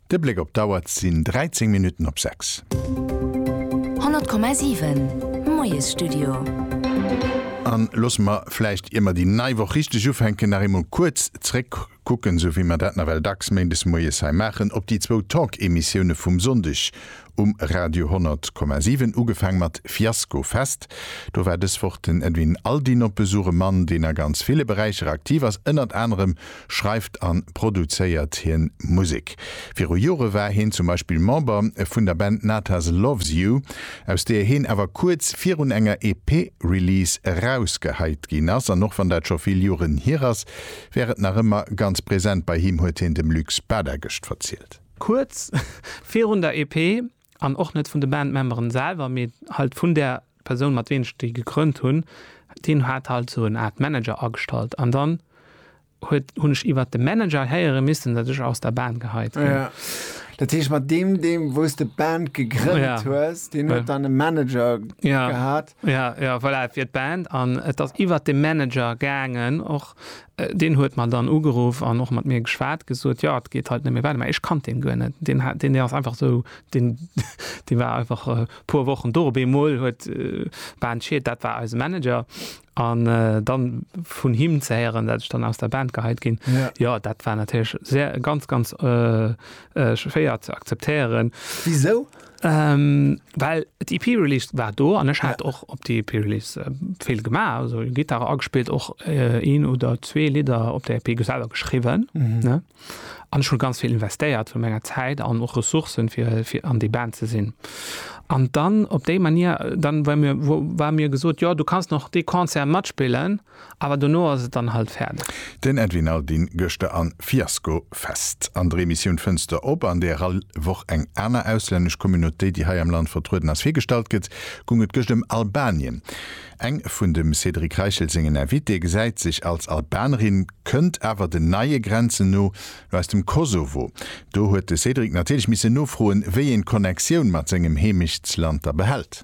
De Bléck op d'Auer, et sinn 13 Minutten op 6. 100,7, Moiesstudio. An loosse mer vläicht, ier mer déi nei Woch richteg ufänken, nach eemol kuerz zréckkucken, esou wéi mer dat nawell dacks méindes moies hei maachen, op déi zwou Talk-Emissioune vum Sonndeg um Radio 100,7 ugefaang mat Fiasco Fest. Do war dës Woch den Edwin Aldin op Besuch, e Mann deen a ganz ville Beräicher aktiv ass. Ënnert anerem schreift an produzéiert hien Musek. Viru Jore war hien zum Beispill Member vun der Band Natas Loves You, aus deeër hien awer kuerz virun enger EP Release erausgeheit ginn ass. An och wann dat scho vill Joren hier ass, wär et nach ëmmer ganz present bei him, huet hien dem Luc Spada gëscht verzielt. Kuerz virun der EP, an och net vun de Bandmemberen selwer, mee halt vun där Persoun mat ween ech déi gegrënnt hunn, deen hat halt sou en Art Manager agestallt an dann huet hunn ech iwwert de Manager héiere missen dat ech aus der Band geheit ginn. Ja, dat heescht mat deem deem wou s de Band gegrënnt hues, deen huet dann e Manager gehat? Ja, ja, voilà, et wier d'Band an et ass iwwert de Manager gaangen och. Deen huet mer dann ugeruff an och mat mir geschwat, gesot, jo, et geet halt net méi weider. Mä ech kannt deen guer net. Deen hat, deen ass einfach esou, deen, dee war einfach e puer Wochen do. Op eemol huet d'Band Schied, dat war eise Manager. An dann vun him ze héieren, dat ech dann aus der Band geheit ginn, jo, dat war natierlech sehr, ganz, ganz schwéier ze akzeptéieren. Wisou? Ähm, well d'IP e Release war do an ech hat ja. och op die EP Release äh, vill gemaach also Gitarre agespielt och äh, een oder zwee Lider op der EP geselber geschrieben mhm. ne an schon ganz viel investéiert vu menger Zeit an och Ressourcen fir fir an die Band ze sinn an dann op déi Manier dann war mir wo war mir gesot ja du kannst noch de Konzer matspillen Awer dono ass et dann halt fäerdeg. Den Edwin Aldin gëschter an Fiasco Fest. An der Emissioun Fënster op, an där all Woch eng aner auslännesch Communauté, déi hei am Land vertrueden ass, virgestallt gëtt, gung et gëscht ëm Albanien. Eng vun dem Cédric Reichel sengen Invitée gesäit sech als Albanerin, kënnt awer den neie Grenzen no no aus dem Kosovo. Do huet de Cédric natierlech misse nofroen, wéi een d'Connectioun mat sengem Heemechtsland da behält.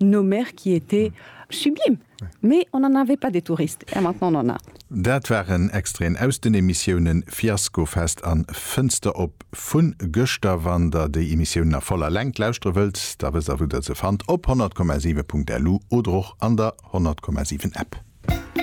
Nos mères qui étaient sublimes, mais on en avait pas des touristes et maintenant on en a. Dat waren Extraiten aus den Emissiounen Fiaskofest an Fënster op vun gëschter. Wann der déi Emissiounen a voller Längt lauschteren wëllt, da wësst der wou der se fannt, op 100,7.lu oder och an der 100,7 App.